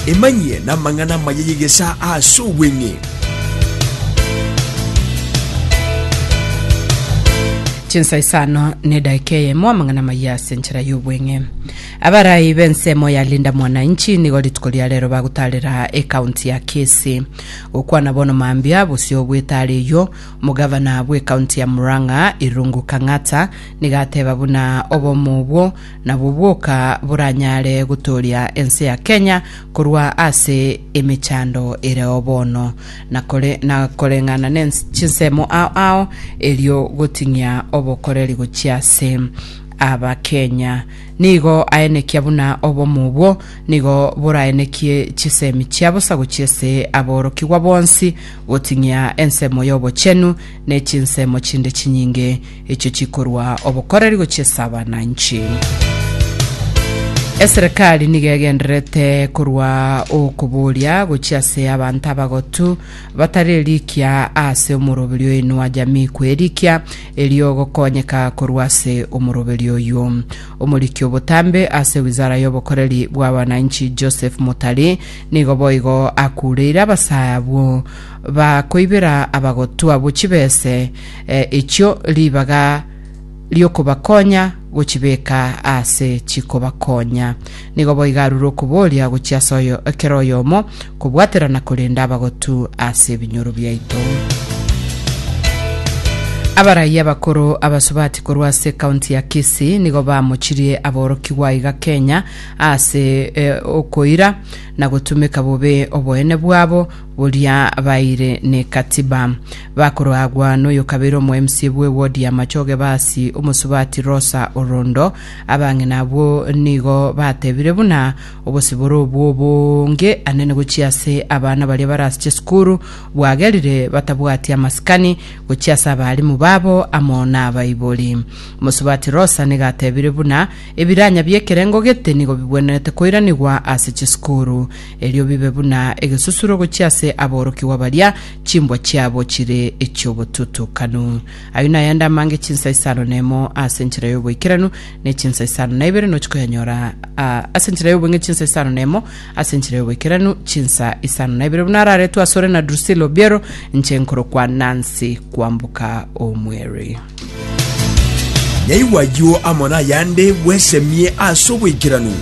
Emanyie namang'ana amaya y'egesaa aase obweng'e. Chinsa isano na edaika eyemo amang'ana amaya ase enchera y'obweng'e. Abarai b'ensemo ya Linda Mwananchi nigo rituko ria rero bagotaarera ekaunti ya Kisii. Gokwana bono mambia bosio bw'etaara eyio, omogavana bw'ekaunti ya Murang'a Irungu Kang'ata nigo ateba buna obomo obwo Nabo bwoka boranyare gotooria ense ya Kenya korwa ase emechando ereo bono, na kore- na koreng'ana ne chinsemo ao ao, erio goting'ia obokoreri gochia ase Abakenya. Nigo aenekia buna obomo obwo nigo boraenekie chisemi chia bosa gochia ase aborokigwa bonsi, goting'ia ensemo y'obochenu ne chinsemo chinde chinyinge, Echio chikorwa obokoreri gochia ase abananchi. Eserekari nigo egendererete korwa okoboria gochia ase abanto abagotu batari erikia ase omoroberi oinwa jamii kwerikia erio gokonyeka korwa ase omoroberi oyio. Omoriki obotambe ase wizara y'obokoreri bw'abananchi Joseph Mutari nigo boigo akureire abasaya abwo bakoibera abagotu abwo chibese eh, echio ribaga riokobakonya gochibeka ase chikobakonya. Nigo boiga arure okoboria gochia ase oyo ekero oyomo kobwatera na korenda abagotu ase ebinyoro biaito. Abaraiya bakoro abasubati korwa ase kaunti ya Kisii nigo bamochirie aborokigwa iga Kenya ase e, okoira na gotumeka bobe oboene bwabo Boria baeire n'ekatiba, bakoroagwa n'oyokabere omoMCA bw'ewodi ya Machoge Basi, omosubati Rosa Orondo. Abang'ina abwo nigo batebire buna obosibore obwo boonge ane negochia ase abana baria barase chisukuru bwagerire batabwati amasikani gochia ase abalimu babo amo nabaibori. Omosubati Rosa nigo atebire buna Ebiranya bi'ekerengo gete nigo bigwenerete koiranigwa ase chisukuru, erio bibe buna egesusuro gochia ase aborokigwa baria chimbwa chiabo chire echi'obotutukanu. Ayio nayende amange chinsa isano na emo ase enchera y'oboikeranu, ne chinsa isano na ibere nochi koyanyora ase enchera y'obong'e, chinsa isano na emo ase enchera y'oboikeranu, chinsa isano na ibere buna araretwe asore na Drusilla Obiero, inche nkorokwa Nancy kwamboka omweri. Nyaigwa ayio amo nayande bwesemie ase oboikeranu.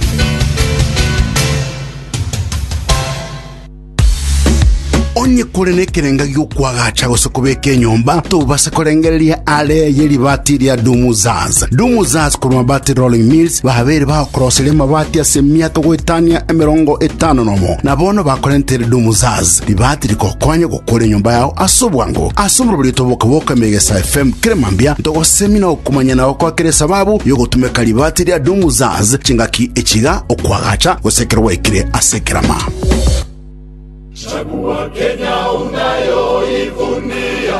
Onye kore nekerenga gi'okwagacha gose kobeka enyomba, tobase korengereria are ye ribaati ria Dumuzaz. Dumuzaz korwa Mabati Rolling Mills babeire bagokoroseria amabati ase emiato goetania emerongo etano nomo, na bono bakorentere Dumuzaz ribaati rigokonye kore enyomba yao ase obwango ase oborobori otoboka boka Megesa FM kere mambia ntogosemina okomanya na gokoa kere esababu yogotumeka ribati ria Dumuzaz chingaki echiga okwagacha gose ekero gwaikire ase ekerama Chagua Kenya unayoivunia.